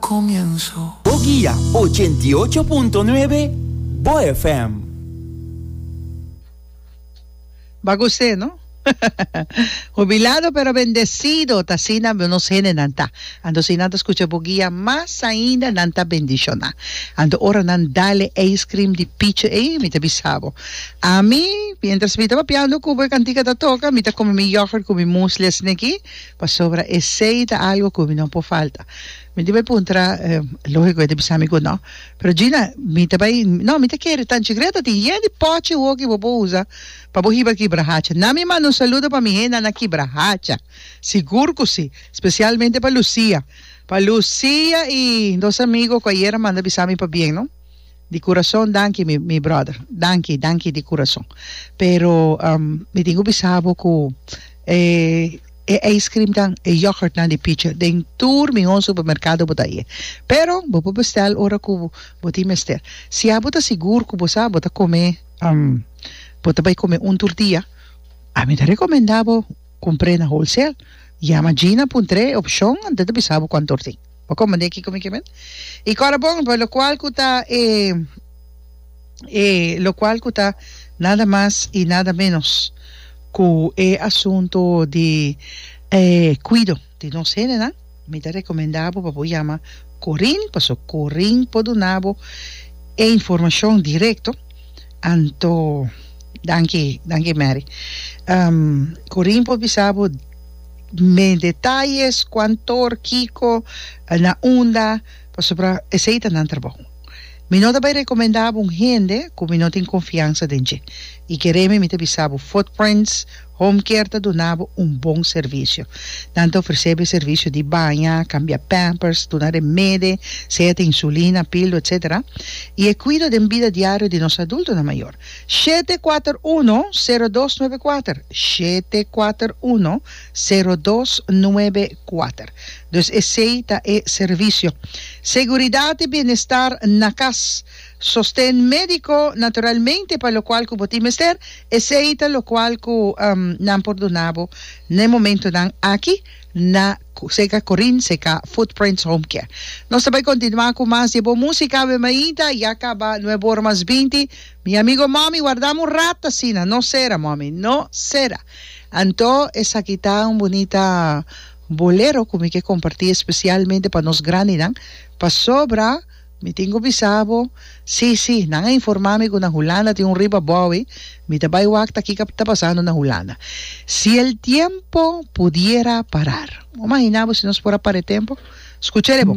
comienzo. Bo guia ochenta i ocho punto nuebe Bo FM. Ba gosé no. Hubilado pero bendecido ta asina nos hendenan ta. Anto si nan ta scucha bo guia mas ainda nan ta bendiciona. Anto ora nan dale ice cream di pichi ey mi ta bisa bo. Ami mientras mi ta papiando cu bo e cantica ta toca mi ta come mi yoghurt cu mi muesli asina aki. Pasobra esei ta algo ku mi no por falta. Mi di bai puntra, lógiko e ta bisa mi ku no. Pero Gina, mi ta bai, no, mi ta kere. Tanchigret a tin yen di pòchi woki bo por usa pa bo hiba kibra hacha. Nan mi manda un saludo pa mi henda na kibra hacha. Sigur ku si. Spesialmente pa Lucia. Pa Lucia i nos amigo ku ayera manda bisa mi pabien, no. Di kurason danki mi mi brother danki danki di kurason pero mi tin ku bisa bo ku e e ice cream nan e yoghurt nan di pichi den tur mi hon supermerkado bo ta iya pero bo por bestel ora ku bo tin mester si abo ta sigur ku bo sa bo ta kome bo ta bai kome un turtia a mi ta rekomenda bo kumpr'e na wholesale yama Gina puntr'e opshon antes ta bisa bo kuantu hor tin. Bo komprendé kiko mi ke men? I kòrda bon, pa lokual ku ta e e lokual ku ta nada mas i nada ménos ku e asuntu di e kuido di nos hendenan, mi ta rekomendá bo pa bo yama Corinne, paso Corinne por duna bo e informashon direkto. Anto danki, danki Mary. Corinne por bisa bo. me detalles cuan tor kico na unda pasobra esey ta nan trabou mi no ta bay recomenda bo un hende cu mi no tin confiansa den dje y keremi mi ta bisa bo footprints home care ta duna bo un bon servicio nan ta ofrece bo e servicio di baña cambia pampers duna remede sea ta insulina pildo etcetera y e cuido den bida diario di nos adultonan mayor. Shete kuater uno, sero dos nuebe kuater, shete kuater uno, sero dos nuebe kuater. Dus esei ta e servisio. Seguridat i bienestar na kas. Sosten médiko naturalmente pa lokual ku bo tin mester, esei ta lokual ku nan por duna bo na e momentunan aki na Seka Korin, Seka Footprints Home Care. Nos ta bai kontinuá ku mas di e bon músika. Awe mainta ya kaba Nuevo Ora Mas Binti. Mi amigo Mommy, wardam un rat asina, no sera, Mommy, no sera. Anto esaki ta un bunita bolero cu mi ke comparti especialmente pa nos grandinan, pasobra mi tin cu bisa bo, si, si, nan a informa mi cu na Hulanda tin un riba bowie, mi ta bay wak ta kiko ta pasando na Hulanda. Si el tiempo pudiera parar. Bo imagina bo si nos por a para e tempo? Scucha ele bo.